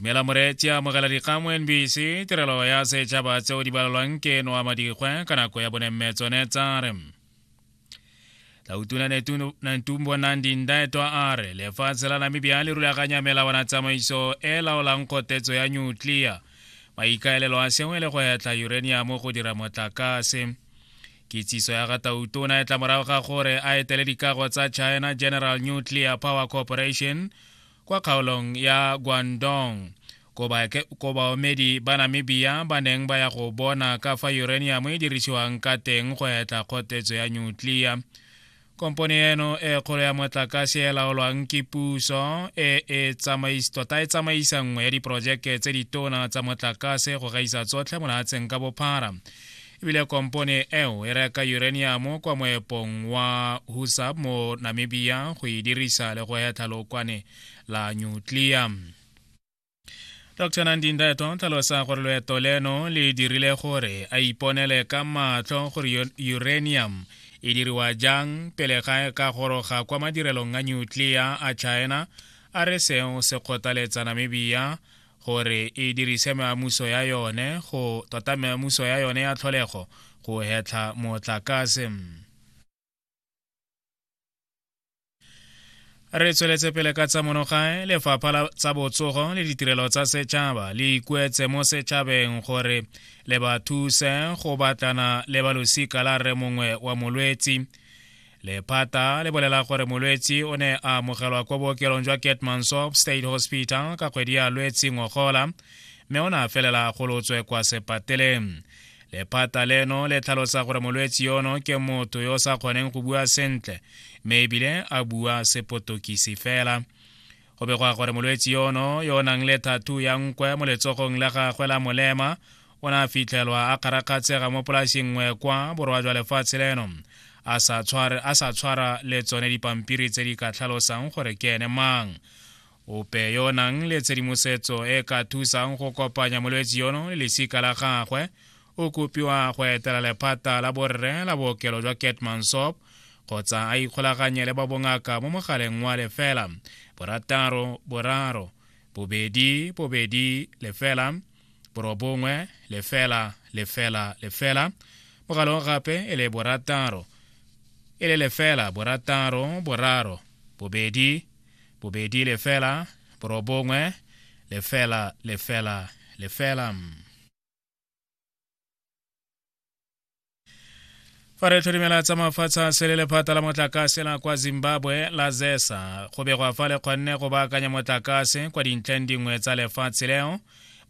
dumela moreetsi amogela dikgang mo nbc tirelo ya setšhaba tseo di balelwang ke noa madikgwe ka nako ya bonemme tsone tsa re lautuna nantumbo nandi ndaetwa a re lefatshe la namibia le rulaganya melawana tsamaiso e laolang kgotetso ya nyutlia maikaelelo a sengwe le go etla uraniamo go dira motlakase kitsiso ya gatautona e tla morago ga gore a etele dikago tsa china general nuclear power corporation kwa kgaolong ya guandong ko baomedi ba namibia ba neng ba ya go bona ka fa uranium e dirisiwang ka teng go etla kgotetso ya nuclear kompone eno e kgolo ya motlakase e laolwang ke puso e e tota e tsamaisa nngwe ya diporojeke tse ditona tsa motlakase go gaisa tsotlhe mo lehatsheng ka bophara ebile kompone eo e reka uranium kwa moepong wa husab mo namibia go e dirisa le go hetlha lokwane la nuclear dr nandinda eto o tlhalosa gore loeto leno le dirile gore a iponele ka matlho gore uranium e diriwa jang pele ga e ka goroga kwa madirelong a nutlea a china a re seo se kgothaletsa namibia gore e dirise meamuso ya yone go tota meamuso ya yone ya tlholego go hetlha motlakase re tsweletse pele ka tsa monogae lefapha la tsa botsogo le ditirelo tsa setšhaba le ikuetse mo setšhabeng gore le ba thuse go batlana le balosika la rre mongwe wa molwetsi lephata le bolela gore molwetsi o ne a amogelwa kwa bookelong jwa ketmansop state hospital ka kgwedi ya lwetsi ngogola mme o ne a felela golotswe kwa sepateleng lephata leno le tlhalosa gore molwetsi yono ke motho yo o sa kgoneng go bua sentle mme ebile a bua sepotokisi fela go begwa gore molwetsi yono yo o nang le thathu ya nkwe mo letsogong la gagwe la molema o ne a fitlhelwa a kgarakgatsega mo polasing nngwe kwa borwa jwa lefatshe leno a sa tshwara le tsone dipampiri tse di ka tlhalosang gore ke ene mang ope yo o nang le tshedimosetso e ka thusang go kopanya molwetsi yono le lesika la gagwe o kopiwa go etela lephata la borre la bookelo jwa ketmansop kgotsa a ikgolaganye le ba bongaka mo mogaleng wa lefela borataro boraro bobedi bobedi lefela borobongwe lefela lefela lefela mogala o gape e le borataro e le lefela borataro boraro bobedi bobedi lefela borobongwe lefela lefela lefela fa re tlhodimela tsa mafatshe a sele lephata la motlakase la kwa zimbabwe la zesa go begwa fa le kgonne go baakanya motlakase kwa dintlheng dingwe tsa lefatshe leo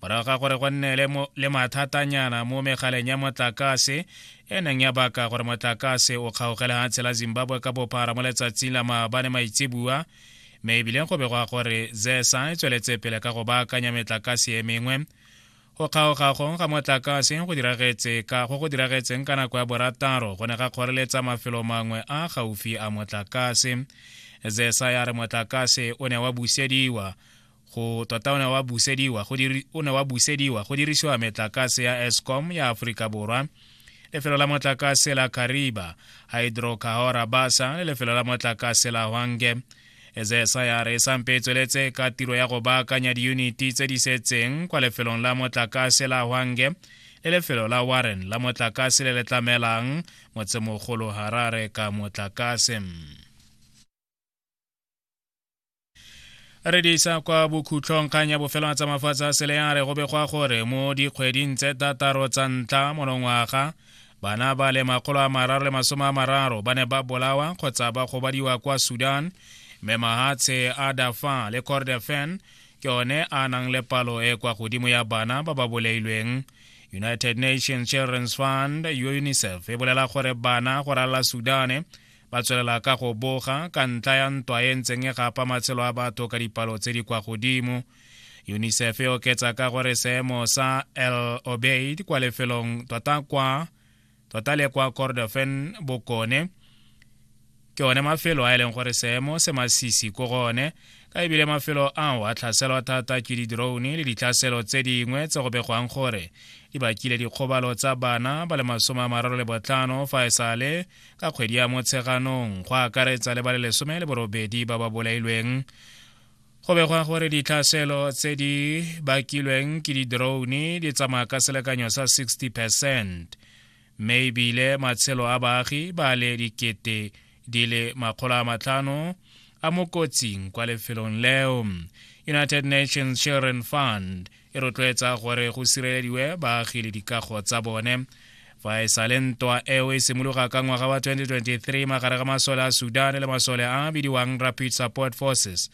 morago ga gore go nne le mathatanyana mo megaleng ya motlakase e neng ya baka gore motlakase o kgaogele ga tshela zimbabwe ka bophara mo letsatsing la maabane maitsebua mme ebileng go begwa gore zesa e tsweletse pele ka go baakanya metlakase e mengwe go kgaoga gong ga motlakase go diragetse ka go go diragetseng ka nako ya borataro go ne ga kgoreletsa mafelo mangwe a gaufi a motlakase zesa ya re motlakase o ne wa busediwa go tota o ne wa busediwa go diri o ne wa busediwa go dirisiwa metlakase ya escom ya aforika borwa lefelo la motlakase la kariba hydrocahora basa le lefelo la motlakase la hwange ezesa ya re sampe e tsweletse ka tiro ya go baakanya diyuniti tse di setseng kwa lefelong la motlakase la hwange le lefelo la warren la motlakase le le tlamelang motsemogolo harare ka motlakase re di isa kwa bokhutlhong kgang ya bofelo a tsamafatsa sele ya re go begwa gore mo dikgweding tse tataro tsa ntlha monongwaga bana ba le makgolo a mararo le masome a mararo ba ne ba bolawa kgotsa ba gobadiwa kwa sudan mme mahatshe a dafa le cordefen ke one a nang le palo e kwa godimo ya bana ba ba boleilweng united nations children's fund unicef e bolela gore bana go ralala sudane Ba tswelela ka go boga ka ntlha ya ntwa e ntseng e gapa matshelo a batho ka dipalo tse di kwa godimo. UNICEF e oketsa ka gore seemo sa El Obeid kwa lefelong tota kwa tota le kwa Kordofan bokone ke one mafelo a e leng gore seemo se masisi ko gone ka ebile mafelo ao a tlhaselwa thata ke di-drone le ditlhaselo tse dingwe tse go begwang gore di bakile dikgobalo tsa bana ba le masome a mararo le botlhano fa e sale ka kgwedi ya motsheganong go akaretsa le ba le lesome le borobedi ba ba bolailweng go begwa gore ditlhaselo tse di bakilweng ke di-drone di tsamaya ka selekanyo sa 60 percent mme ebile matshelo a baagi ba le dikete di le makgolo a matlhano a mo kotsing kwa lefelong leo united nations children fund e rotloetsa gore go sirelediwe baagi le dikago tsa bone fa e sale ntwa eo e simologa ka ngwaga wa 2023 magare ga masole a sudan le masole a bidiwang rapid support forces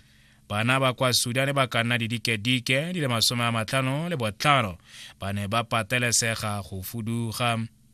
bana ba kwa sudan ba ka nna didikedike di le masome a matlhano le botlhano ba ne ba patelesega go fuduga